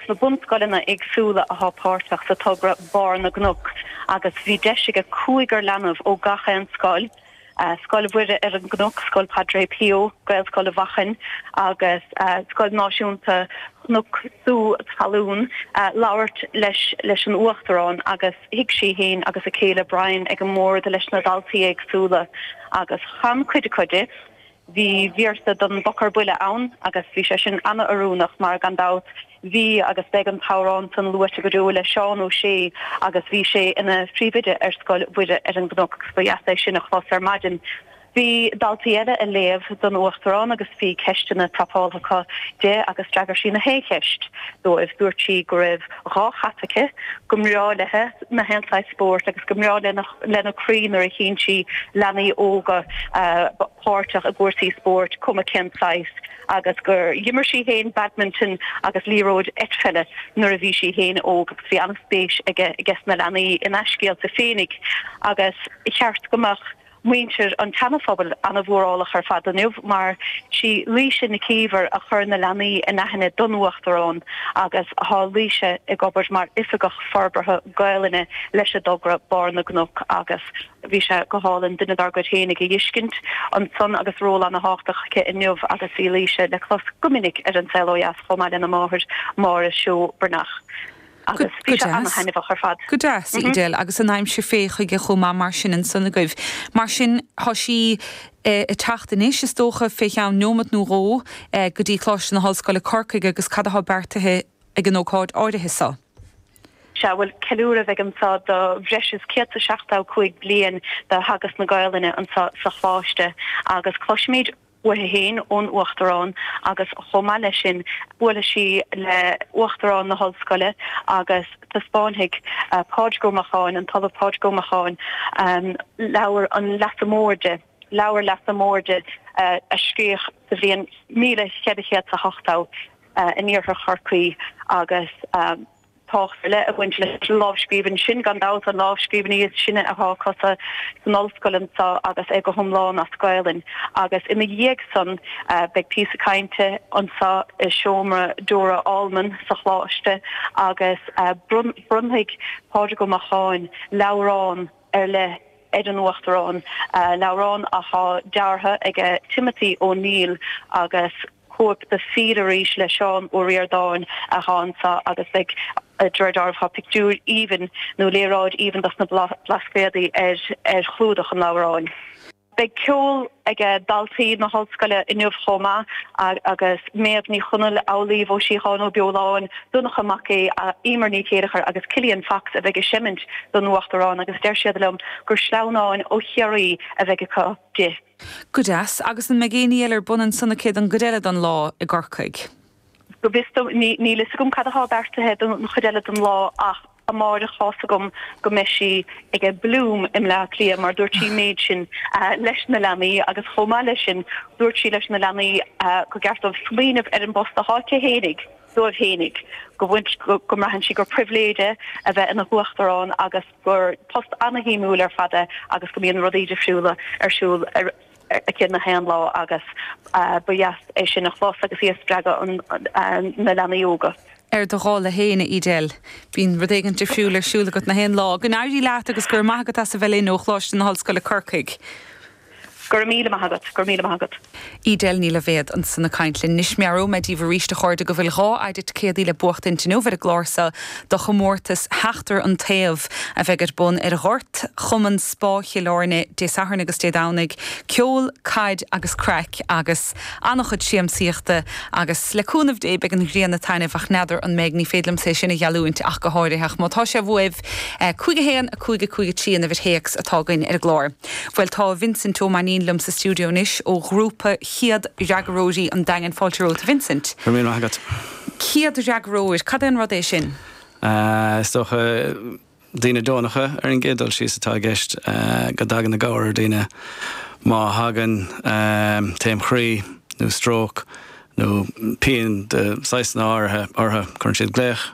sna bunscoileanna éagsúla athá páirteach sa togra Barr na gCnoc agus bhí deis aige cúigear leanbh ó gach aon scoil, Scoil Mhuire ar an gCnoc, Scoil Padre Pio, Gaelscoil Mhachan agus Scoil Náisiúnta Chnoc Sú Talún, labhairt leis leis an Uachtarán agus shuigh sí fhéin agus a céile Brian ag an mbord leis na daltaí éagsúla agus chan cuid acu di Bhí véarsa don bPoc ar Buile ann agus bhí sé sin ana-oiriúnach mar, gan dabht, bhí agus beidh an t-amhrán san luaite go deo le Seán Ó Sé agus bhí sé ina phríomhoide ar Scoil Mhuire ar an gCnoc agus ba dheas é sin a chlos ar maidin. Bhí daltaí eile a léamh don Uachtarán agus bhí ceisteanna prapáltha acu di agus d'fhreagair sí na h-aon cheist dóibh. Dúirt sí go raibh dhá chat aici, go mbreá léithe na h-aon saghas spóirt agus go mbreá lena. lena croí nuair a chíonn sí leanaí óga páirteach i gcúrsaí spóirt cuma cén saghas agus gur dh'imir sí féin badminton agus liathróid eitpheile nuair a bhí sí féin óg agus bhí an-spéis aiges na leanaí ina scéalta féinig agus ba cheart go mbeadh muintir an tSeanaphobail an-mhórálach ar fad inniu mar sí Laoise Nic Íomhair a chuir na leanaí in aithne don Uachtarán agus thá Laoise ag obair mar Oifigeach forbartha Gaelainne leis an dtogra Barr na gCnoc agus bhí sé go hálainn duine dár gcuid féinig a dh'fheiscint ansan agus ról ana-thábhachtach aici inniu agus í Laoise le clos go minic ar An Saol ó Dheas chomh maith lena máthair Máire Seó Breathnach agus bhí sé ana-thaitneamhach ar fad. Go deas, Edel, agus an aimsir fé chuige chomh maith mar sin ansan agaibh. Mar sin thá sí ag teacht anois, is dócha, fé cheann neomat nó dhó go dtí Coláiste na hOllscoile Corcaigh agus cad athá beartaithe ag an ócáid áirithe seo. Sea, bhuel, ceiliúradh a bheidh anso do bhreis is 175 bliain de theagasc na Gaelainne anso sa Choláiste agus cloisfimíd uaithe fhéin ón Uachtarán agus chomh maith leis sin buailfidh sí le Uachtarán na hOllscoile agus taispeánfaidh Pádraig Ó Macháin, an tOllamh Pádraig Ó Macháin, Leabhar an Leasa Móir di, Leabhar Leasa Móir di a scríodh sa bhliain 1480. in iarthar Chorcaí agus tábhacht ar leith ag baint leis an lámhscríbhinn sin, gan dabht an lámhscríbhinn is sine athá acusan san ollscoil annso agus é go hiomlán as Gaelainn. Agus ina dhiaidh san beidh píosa cainte annso i seomra Dora Allman sa Choláiste agus bronnfaidh Pádraig Ó Macháin leabhrán ar leith ar an Uachtarán, leabhrán athá deartha aige Timothy O'Neill agus. cóip de Fill Arís le Seán Ó Ríordáin athá anso agus beidh de réir dealraimh athá pictiúir aoibhinn nó léaráid aoibhinn dos na Blascaodaí ar chlúdach an leabhráin. Beidh ceol ag daltaí na hOllscoile inniu chomh maith agus Méabh Ní Chonaill, Amhlaoibh Ó Síocháin Ó Beoláin, Donncha Mac Aoidh, Emer Ní Chéilleachair agus Killian Fox a bheidh ag seimint don Uachtarán agus deir siad liom gur sleamhnáin ó Chiarraí a bheidh acu di. Go deas. Agus an mbeidh éinní eile ar bun ansan aici don gcuid eile don lá i gCorcaigh? Go bhfios dom níl fhios agam cad atá beartaithe don chuid eile don lá ach amáireach tá fhios agam go mbeidh sí aige Bloom i mBleá Cliath mar dúirt sí an méid sin leis na leanaí agus chomh maith leis sin dúirt sí leis na leanaí go gceart dóibh smaoineamh ar an bpost athá aici fhéinig dóibh fhéinig go bhfuil go mbraitheann sí gur pribhléid é a bheith ina hUachtarán agus gur post ana-shuimiúil ar fad é agus go mbíonn rudaí difriúla ar siúl aici na haon lá agus ba dheas é sin a chlos agus í ag spreagadh na leanaí óga. Ar do dhála féin, a Edel. Bíonn rud éigint difriúil ar siúl agat na haon lá. Go n-éirí leat agus go raibh maith agat as a bheith linn ó Choláiste na hOllscoile Corcaigh. Go raibh míle maith agat, go raibh míle maith agat. Edel Ní Loibhéad ansan ag caint linn anois. Meabhróidh mé díbh aríst a chairde go bhfuil dhá shet ticéadaí le buachtaint inniu ar an gclár seo do chomórtas Sheachtar an Taobh a bheidh ar bun ar ghort Chumann Spá Chill Airne Dé Sathairn agus Dé Domhnaigh. Ceol, caid agus craic agus an-chuid siamsaíochta agus le cúnamh Dé beidh an ghrian ag taitneamh ach n'fheadar an mbeidh, ní féidir liomsa é sin a gheallúint ach go háirithe ach má tá sibh uaibh, 5 1 5 5 3 an uimhir théacs atá againn ar an gclár. Bhuel tá Vincent Ó Mainnín liom sa stiúideo anois ó ghrúpa chéad fhreagróirí an Daingin. Fáilte romhat Vincent. Go raibh míle maith agat. Céad fhreagróir, cad é an rud é sin? Is dócha daoine deonacha ar an gcéad dul síos atá i gceist, go dtagann i gcabhair ar dhaoine má thagann taom chroí nó stróc, nó pian de shaghasanna áirithe ortha, cuireann siad glaoch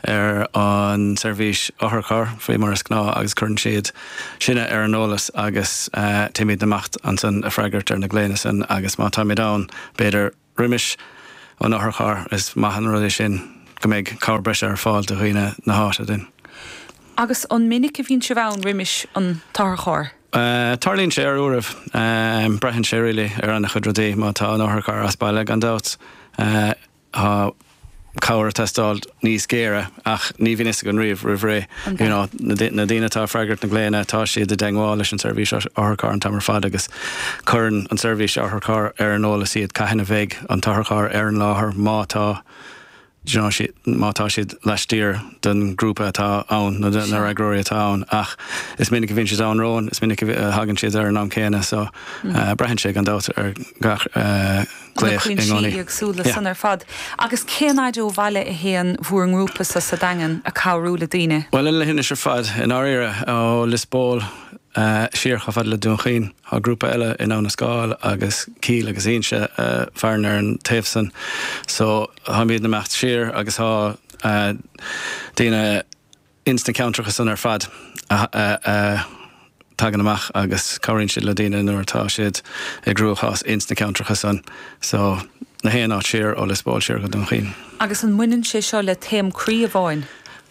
ar an seirbhís otharcharr faoi mar is gnáth agus cuireann siad sinne ar an eolas agus téimíd amach annsan ag freagairt ar na glaonna san agus má táimíd ann b'fhéidir roimis an otharcharr is maith an rud é sin go mbeidh cabhair breise ar fáil do dhaoine na h-áite duinn. Agus an minic a bhíonn sibh ann roimis an t-otharcharr? Tarlaíonn sé ar uairibh. Braitheann sé really ar ana chuid rudaí. Má tá an otharcharr as baile gan dabht tá cabhair ag teastáil níos géire ach ní bhíonn fhios againn riamh roimh ré. You know na daoine atá ag freagairt na glaonna tá siad i dteagmháil leis an seirbhís otharcharr an t-am ar fad agus cuireann an tseirbhís otharcharr ar an eolas iad cathain a bheidh an t-otharcharr ar an láthair má tá má tá siad laistiar den ghrúpa atá ann nó de na fhreagróirí atá ann ach is minic a bhíonn siad ann romhainn, is minic a thagann siad ar an am céanna so braitheann sé gan dabht ar gach glaoch i gcónaí. Tá na cúinsí éagsúil le san ar fad. Agus cén fhaid ó bhaile a théann bhur ngrúpa-sa sa Daingean ag cabhrú le daoine? Bhuel an leithinis ar fad, i ndáiríre, ó Lios Póil siar chomh fada le Dún Chaoin. Thá grúpa eile in Abha na Scáil agus Cíll agus Ínse a mhaireann ar an taobh san so táimídne amach siar agus thá daoine ins na ceantracha san ar fad a tagann amach agus cabhraíonn siad le daoine nuair atá siad i gcruachás ins na ceantracha san so na haon áit siar ó Lios Póil siar go Dún Chaoin. Agus an mbaineann sé seo le taom croí amháin?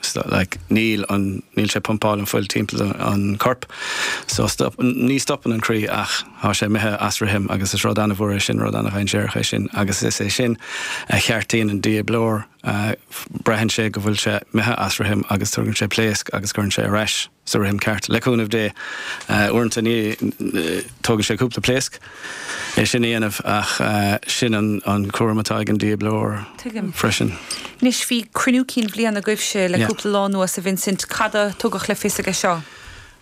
stop, like, níl an, níl sé ag pumpáil an fuil timpeall an corp so stop, ní stopann an croí ach tá sé imithe as rithim agus is rud an-mhór é sin, rud an-dhainséarach é sin agus is é sin a cheartaíonn an dífhibrileoir, braitheann sé go bhfuil sé imithe as rithim agus tugann sé pléasc agus cuireann sé ar ais. sa rithim ceart, le cúnamh Dé. Uaireanta ní, tógann sé cúpla pléasc é sin a dhéanamh ach sin an cúram atá ag an dífhibrileoir freisin. Anois, bhí cruinniú cinn bhliana agaibhse le cúpla lá anuas, a Vincent. Cad a tugadh le fios aige seo?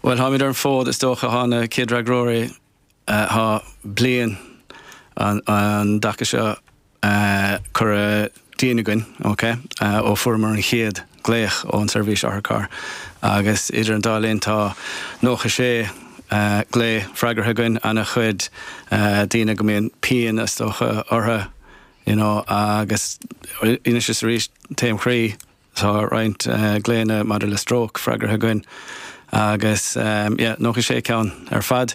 Bhuel, táimid ar an bhfód, is dócha, na céadfhreagróirí. Tá bliain an dtaca seo curtha dínn againn, ok, ó fuaireamar an chéad glaoch ón tSeirbhís Otharcharr agus idir an dá linn tá nócha sé glao freagartha againn, ana chuid daoine go mbíonn pian is dócha ortha, you know, agus anois is arís taom chroí. Tá roinnt glaonna maidir le stróc freagraithe againn agus yeah, 96 ceann ar fad.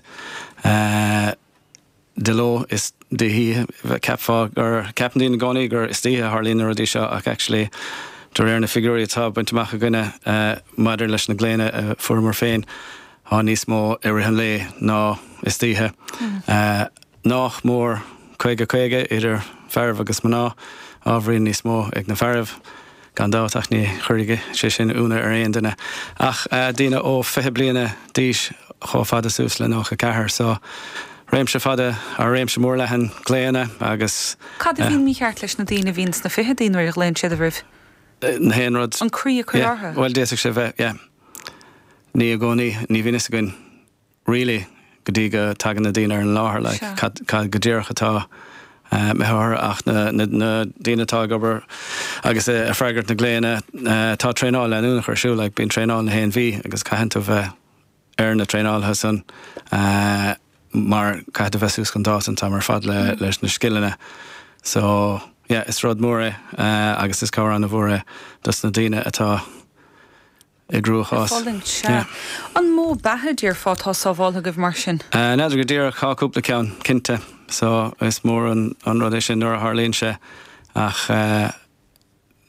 De ló is d'oíche, cheapfá gur, ceapann daoine i gcónaí gur istoíche a tharlaíonn na rudaí seo ach actually de réir na figiúirí atá bainte amach againne maidir leis na glaonna a fuaireamar féin, tá níos mó i rith an lae ná istoíche. nách mór caoga caoga idir fearaibh agus mná, ábhairín níos mó ag na fearaibh gan dabht ach ní chuirfidh sé sin iúnadh ar aon duine ach daoine ó fiche bliana d'aois chomh fada suas le nócha ceathair so réimse fada, á réimse mór leathan glaonna agus. Cad a bhíonn mícheart leis na daoine a bhíonn sna ficheadaí nuair a ghlaonn siad oraibh, na haon rud? An croí ag cur orthu? Yeah, bhuel d'fhéadfadh sé bheith, yeah. Ní i gcónaí, ní bhíonn a fhios againn. really, go dtí go tagann na daoine ar an láthair, like, Sure. cad, cad go díreach atá, eh, mícheart ach na, na, na daoine atá ag obair agus eh, ag freagairt na glaonna, eh, tá traenáil leanúnach ar siúl, like, bíonn traenáil nach aon mhí agus caitheann tú bheith ar na traenáilthe san eh, mar caitheann tú bheith suas chun dáta an t-am ar fad le, leis na scileanna. So, yeah, is rud mór é eh, agus is cabhair an-mhór é dos na daoine atá i gcruachás. fulaingt, sea. Yeah. An mó beatha, déarfá, atá sábháltha agaibh mar sin? N'fheadar go díreach. Tá cúpla ceann, cinnte. So, is mór an rud é sin nuair a tharlaíonn sé. Ach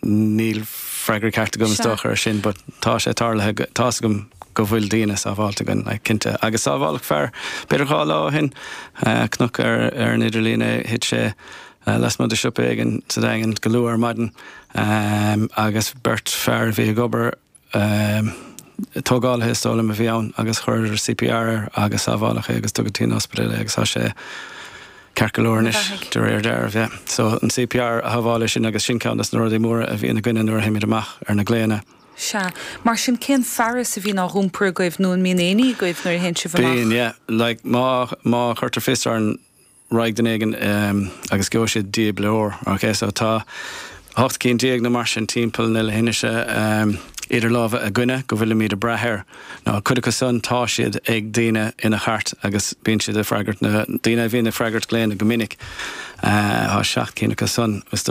níl freagra ceart agam, is Sea. dócha, ar sin. But tá sé tarlaithe, tá's agam go bhfuil daoine sábháilte againn, like, cinnte. Agus sábháladh fear, b'fhéidir dhá lá ó shin, chonac ar an idirlíon é, thit sé eh, lasmuigh de siopa éigin sa Daingean go luath ar maidin ehm agus beirt fear a bhí ag obair ehm tógálaithe is dóigh liom a bhí ann agus chuireadar CPR air agus sábháladh é agus tugadh dtí'n ospidéal é agus tá sé ceart go leor Ina anois bheathaigh. de réir dealraimh yeah. So an CPR a shábháil é sin agus sin ceann dos na rudaí móra a bhíonn againne nuair a théimid amach ar na glaonna. Sea. Mar sin cén fearas a bhíonn á dh'iompar agaibh nó an mbíonn éinní agaibh nuair a théann sibh amach? Bíonn yeah. Like má, má chuirtear fios orainn Raghaidh duine éigin agus gheobhaidh sé dífhibrileoir. Ok so tá hocht gcinn déag nó mar sin timpeall na leithinse idir lámha againne go bhfuilimíd a' brath air. Now cuid acu san tá siad ag daoine ina chairt agus bíonn siad ag freagairt na daoine a bhíonn ag freagairt glaonna go minic. Tá seacht cinn acu san.